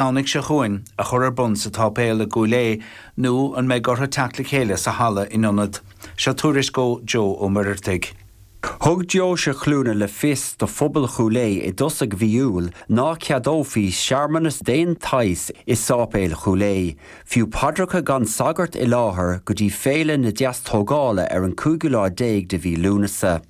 Domhnaigh seo chugainn, a chur ar bun sa tSáipéal i gCúil Aodh nó an mbeidh orthu teacht le chéile sa halla in ionad? Seo tuairisc ó Joe Ó Muirheartaigh. Thug Deoise Chluana le fios do phobal Chúil Aodh i dtosaigh mhí Iúil ná ceadófaí searmanas d'aon tsaghas i Sáipéal Chúil Aodh, fiú paidreacha gan sagart i láthair, go dtí Féile na Deas-Tógála ar an cúigiú lá déag de mhí Lúnasa.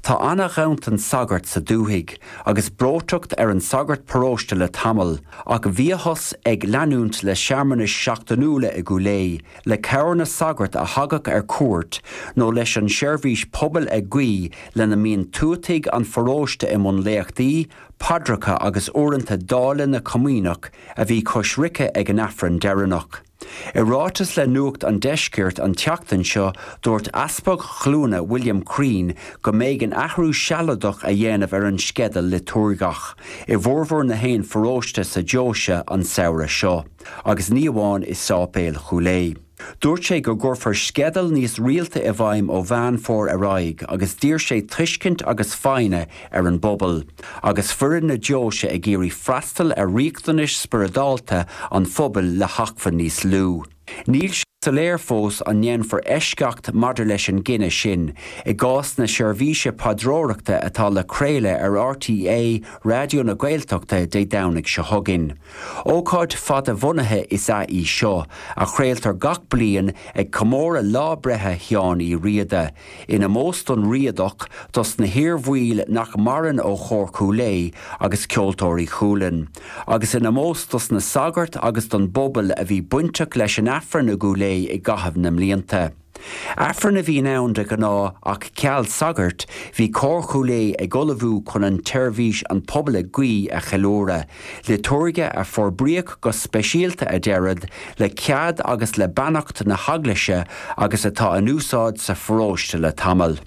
Tá ana-ghanntan sagart sa dúthaigh, agus breoiteacht ar an sagart paróiste le tamall, ach bhíothas ag leanúint le searmanais seachtainiúla i gCúil Aodh, le cabhair na sagart a thagadh ar cuairt, nó leis an seirbhís pobail ag guí ina mbíonn tuataigh an pharóiste i mbun léachtaí, paidreacha agus uaireanta dáileadh na comaoineach, a bhí coisricthe ag an Aifreann deireanach. I ráiteas le Nuacht an Deiscirt an tseachtain seo, dúirt Easpag Chluana William Crean go mb'éigean athrú sealadach a dhéanamh ar an sceideal liotúirgeach i bhformhór nach aon pharóiste sa deoise an samhradh seo, agus ní amháin i Sáipéal Chúil Aodh. Dúirt sé go gcuirfear sceideal níos rialta i bhfeidhm ó Mheán Fómhair ar aghaidh agus d'iarr sé tuiscint agus foighne ar an bpobal, agus foireann na deoise ag iarraidh freastal ar riachtanais spioradálta an phobail le hacmhainn níos lú. Níl sé soiléir fós an ndéanfar eisceacht maidir leis an gcinneadh sin i gcás na seirbhíse paidreoireachta atá le craoladh ar RTÉ Raidió na Gaeltachta Dé Domhnaigh seo chugainn. Ócáid fada-bhunaithe is ea í seo, a chraoltar gach bliain ag comóradh lá breithe Sheáin Uí Riada, In omós don Riadach, dos na hiar-bhaill nach maireann ó Chór Chúil Aodh agus Ceoltóirí Chualainn, agus in omós dos na sagairt agus don bpobal a bhí bainteach leis an Aifreann i gCúil Aodh i gcaitheamh na mblianta. Aifreann a bhíonn ann de ghnáth ach ceal sagairt, bhí Cór Chúil Aodh ag ullmhú chun an tseirbhís 'An Pobal ag Guí' a cheiliúradh, Liotúirge a forbraíodh go speisialta a deirid le cead agus le beannacht na hEaglaise agus atá in úsáid sa pharóiste le tamall.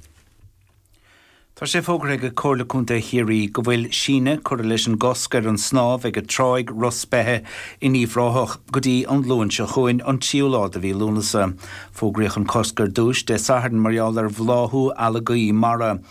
Tá sé fógartha ag Comhairle Contae Chiarraí go bhfuil síneadh curtha leis an gcosc ar an snámh ag Tráigh Ros Beithe in Uíbh Ráthach go dtí an Luan seo chugainn, an tríú lá de mhí Lúnasa. Fógraíodh an cosc ar dtúis Dé Sathairn mar gheall ar bhláthú algaí mara.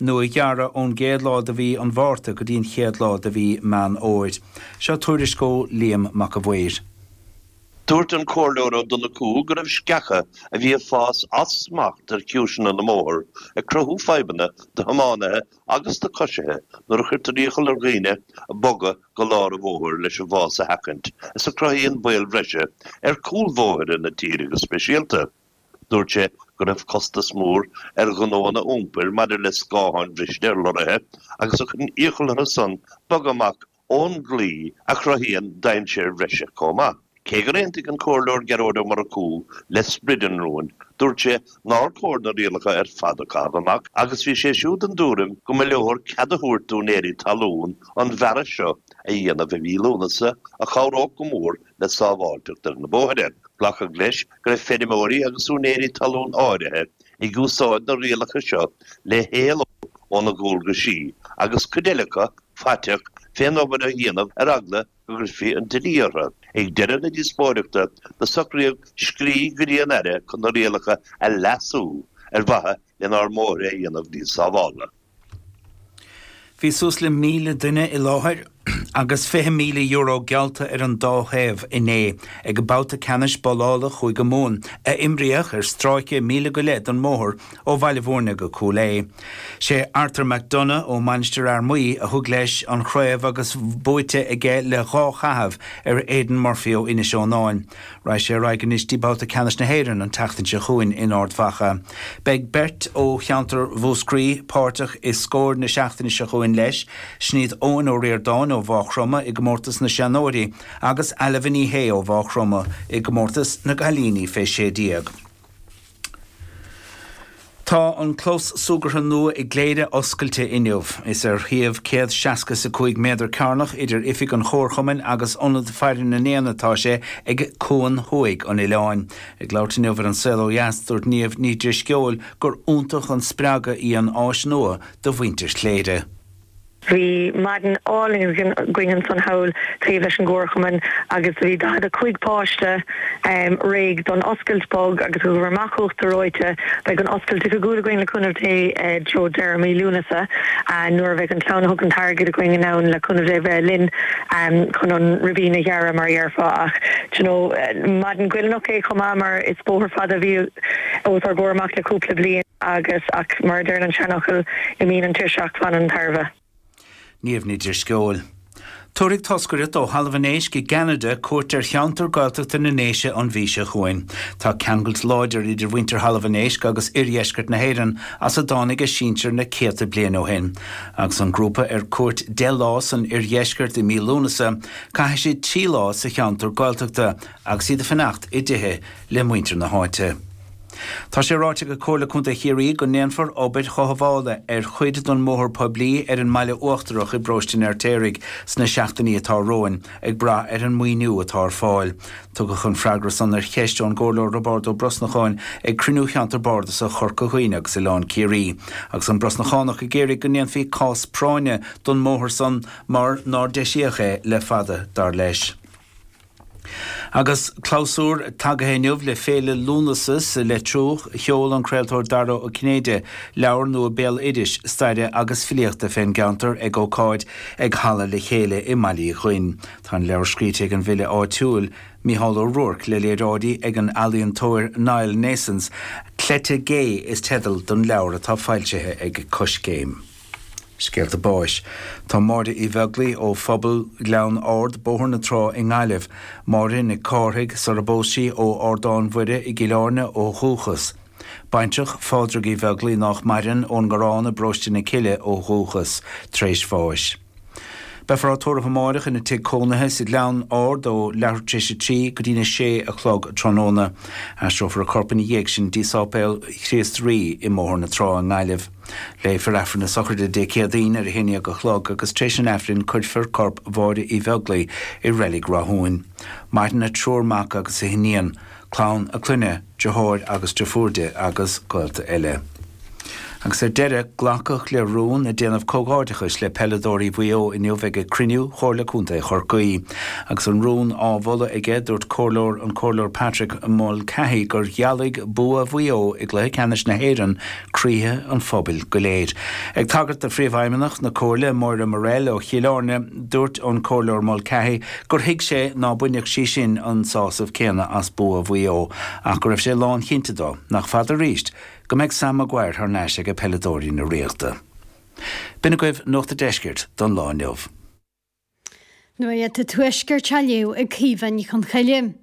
nó a ghearradh ón gcéad lá de mhí an Mhárta go dtí an chéad lá de mhí Meán Fhómhair. Seo tuairisc ó Liam Mac a' Mhaoir. Dúirt an Comhairleoir Ó Donnchú go raibh sceacha a bhí ag fás as smacht ar chiumhaiseanna na mbóthar ag cruthú fadhbanna do thiománaithe agus do coisithe nuair a chuirtear iachall ar dhaoine bogadh go lár an bhóthair leis an bhfás a sheachaint is a chruthaíonn baol breise ar chúlbhóithre na tíre go speisialta. Dúirt sé go raibh costas mór ar ghnóanna iompair maidir le scátháin bhriste ar lorraithe agus a chuireann iachall orthu san bogadh amach ón gclaí a chruthaíonn dainséir bhreise chomh maith. Cé gur aontaigh an Comhairleoir Gearóid Ó Murchú le sprid an rúin, dúirt sé nár chóir na rialacha ar fad a chaitheamh amach agus bhí sé siúd den tuairim go mba leor cead a thabhairt d'úinéirí talún an bhearradh seo a dhéanamh i mhí Lúnasa a chabhródh go mór le sábháilteacht ar na bóithre. Glacadh leis go raibh feirmeoirí agus úinéirí talún áirithe ag úsáid na rialacha seo le héalú óna ndualgaisí agus cuid eile acu faiteach fén obair a dhéanamh ar eagla go gcuirfí an dlí orthu. Ag deireadh na díospóireachta do socraíodh scrí go dtí an Aire chun na rialacha a leasú ar mhaithe lenár mbóithre a dhéanamh níos sábháilte. Bhí suas le míle duine i láthair agus €20,000 geallta ar an dá thaobh inné ag an mbabhta ceannais babhlála Chúige Mumhan a imríodh ar stráice míle go leith den mbóthar ó Bhaile Bhúirne go Cúil Aodha. Sé Arthur McDonagh ó Mhainistir Fhear Maí a thug leis an chraobh agus buaite aige le dhá chaitheamh ar Aidan Murphy ó Inis Eonáin. Raghaidh sé ar aghaidh anois dtí babhta ceannais na hÉireann an tseachtain seo chugainn in Ard Mhacha. Beidh beirt ó cheantar Mhúscraí páirteach i Scór na seachtaine seo chugainn leis, sin iad Eoin Ó Ríordáin ó Mhá Chromtha i gcomórtas na seanóirí agus Ailbhe Ní Shé ó Mhá Chromtha i gcomórtas na gcailíní fé 16. Tá an clós súgartha nua i gCléire oscailte inniu. Is ar shuíomh céad seasca is a cúig méadar cearnach idir oifig an Chomharchumainn agus Ionad Faire na nÉan atá sé, ag Cuan Thuaidh an Oileáin. Ag labhairt inniu ar An Saol Ó Dheas, dúirt Niamh Ní Dhrisceoil gur iontach an spreagadh í an áis nua do mhuintir Chléire. Bhí maidin álainn againn insan hall taobh leis an gcomharchumann agus do bhí 45 páiste réidh don oscailt bog agus ghabh ar amach uachtar reoite. Beidh an oscailt oifigiúil againn le cúnamh Dé i dtreo deireadh mhí Lúnasa nuair a bheidh an clann a thug an t-airgead againn in ann le cúnamh Dé bheith linn chun an ribín a ghearradh mar a dheirfeá ach d'you know maidin goilliúnach é chomh maith mar is bóthar fada a bhí os ár gcomhair amach le cúpla bliain. Agus, ach, mar a deireann an seanfhocal, imíonn an tuirseacht, fanann an tairbhe. Niamh Ní Dhrisceoil. Tabharfaidh toscaireacht ó Thalamh an Éisc i gCeanada cuairt ar cheantar Gaeltachta na nDéise an mhí seo chugainn. Tá ceangailt láidir idir mhuintir Thalamh an Éisc agus Oirdheisceart na hÉireann as a dtáinig a sinsir na céadta bliain ó shin. Agus an grúpa ar cuairt deich lá san Oirdheisceart i mí Lúnasa, caithfidh siad trí lá sa cheantar Gaeltachta agus iad ag fanacht i dtithe le muintir na háite. Tá sé ráite ag Comhairle Contae Chiarraí go ndéanfar obair chothabhála ar chuid den mbóthar poiblí ar an mBaile Uachtarach i bParóiste an Fheirtéaraigh sna seachtainí atá romhainn, ag brath ar an maoiniú atá ar fáil. Tugadh an freagra san ar cheist ón gComhairleoir Roibeárd Ó Brosnacháin ag cruinniú Cheantar Bardasach Chorca Dhuibhne agus Oileán Ciarraí, agus an Brosnachánach ag iarraidh go ndéanfaí cás práinne don mbóthar san mar nár deisíodh é le fada, dar leis. Agus clabhsúr tagtha inniu le Féile Lúnasa sa Leitriúch, sheol an craoltóir Dara Ó Cinnéide leabhar nua béaloidis, staire agus filíochta fén gceantar ag ócáid ag Halla Le Chéile i mBaile Uí Dhuinn. Tá an leabhar scríte ag an bhfile áitiúil, Micheál Ó Ruairc, le léaráidí ag an ealaíontóir Niall Naessens. Cleite Gé is teideal don leabhar atá foilsithe ag Coiscéim. Scéalta báis. Tá Máire Uí Bheaglaoi ó Phobal Ghleann Ard, Bóthar na Trá i nGaillimh, Máire Nic Cárthaigh, sarar phós sí, ó Ardán Mhuire i gCill Áirne ó dhúchas. Baintreach Phádraig Uí Bheaglaoi nách maireann, ón nGarrán i bParóiste na Cille ó dhúchas, tar éis bháis. Beifear á tórramh amáireach ina tigh cónaithe sa Ghleann Ard ó leathuair tar éis a trí go dtína sé a chlog tráthnóna. Aistreofar a corp ina dhiaidh sin dtí Sáipéal Chríost Rí i mBóthar na Trá i nGaillimh. Léifear Aifreann na Sochraide Dé Céadaoin ar a haon dhéag a chlog agus tar éis an Aifrinn cuirfear corp Mháire Uí Bheaglaoi i Reilig Ráthúin. Maireann a triúr mac agus a hiníon. clann a clainne, deartháir agus deirfiúr di, agus gaolta eile. Agus ar deireadh, glacadh le rún le déanamh comhghairdeachais le peileadóirí Mhaigh Eo inniu ag ag cruinniú Chomhairle Contae Chorcaí. Agus an rún á mholadh aige, dúirt comhairleoir an Comhairleoir Patrick Mulcahy gur ghealaigh bua Mhaigh Eo i gCluiche Ceannais na hÉireann croíthe an phobail go léir. Ag tagairt do Phríomhfheidhmeannach na Comhairle, Moira Morell ó Chill Áirne, dúirt an Comhairleoir Mulcahy gur thuig sé ná bainfeadh sí sin an sásamh céanna as bua Mhaigh Eo ach go raibh sé lánchinnte de nach fada arís go mbeidh Sam Maguire thar n-ais aige peileadóirí na Ríochta. B'in agaibh Nuacht a' Deiscirt don lá inniu. Nuacht a' Tuaiscirt á léamh ag Caoimhe Ní Chonchoille.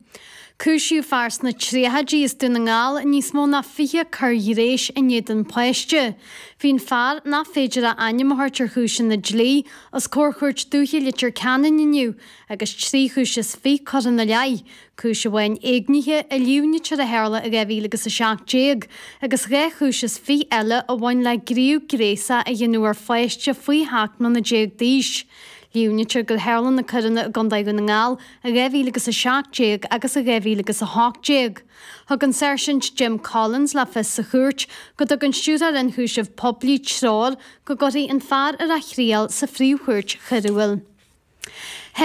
Cúisíodh fear sna tríochaidí as Dún na nGall i níos mó ná 20 coir ghnéis in éadan páiste. Bhí an fear, nach féidir a ainm a thabhairt ar chúiseanna dlí, os comhair Chúirt Dúiche Leitir Ceanainn inniu agus trí chúis is fiche curtha ina leith, Cúis amháin éignithe a líomhnaítear a tharla i 2017 agus dhá chúis is fiche eile a bhain le gníomh gnéasach a dhéanamh ar pháiste faoi sheacht mbliana déag d'aois. Líomhnaítear gur tharla na coireanna i gcontae Dhún na nGall i 2017 agus i 2018. Thug an Sáirsint Jim Collins le fios sa chúirt go dtug an Stiúrthóir Ionchúiseamh Poiblí treoir go gcuirfí an fear ar a thriail sa Phríomhchúirt Choiriúil.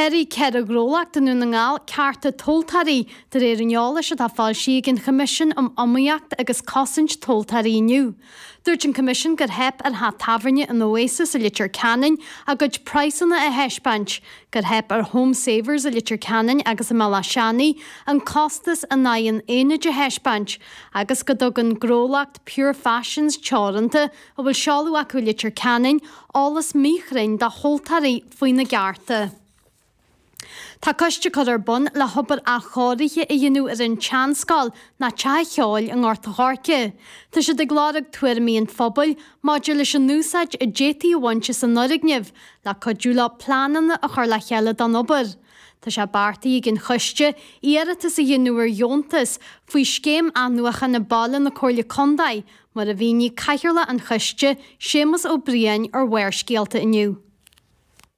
Sháraigh ceithre ghnólacht i nDún na nGall cearta tomhaltóirí, de réir an eolais atá foilsithe ag an Choimisiún um Iomaíocht agus Cosaint Tomhaltóirí inniu. Dúirt an Coimisiún gur theip ar theach tábhairne an Oasis i Leitir Ceanainn a gcuid praghsanna a thaispeáint, gur theip ar Home Savers i Leitir Ceanainn agus i mBaile Átha Seanaidh an costas in aghaidh an aonaid a thaispeáint, agus go dtugann gnólacht Pure Fashions teoranta a bhfuil seoladh acu i Leitir Ceanainn, eolas míchruinn dá thomhaltóirí faoina gcearta. Tá coiste curtha ar bun le hobair athchóirithe a dhéanamh ar an tseanscoil, nó teach ceoil i nGort a' Choirce. Tá siad ag lorg tuairimí an phobail maidir leis an úsáid a d'fhéadfaí a bhaint as an fhoirgneamh le cuidiú leo pleananna a chur le chéile don obair. Tá sé beartaithe ag an choiste iarratas a dhéanamh ar dheontas faoi scéim athnuachana baile na Comhairle Contae, Mar a mhínigh cathaoirleach an choiste, Séamus Ó Briain, ar Bharrscéalta inniu.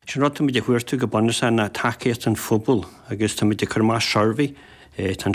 Sin rud táimid ag cuartú go bunúsach ná tacaíocht an phobail agus táimid ag cur amach suirbhé, tá an.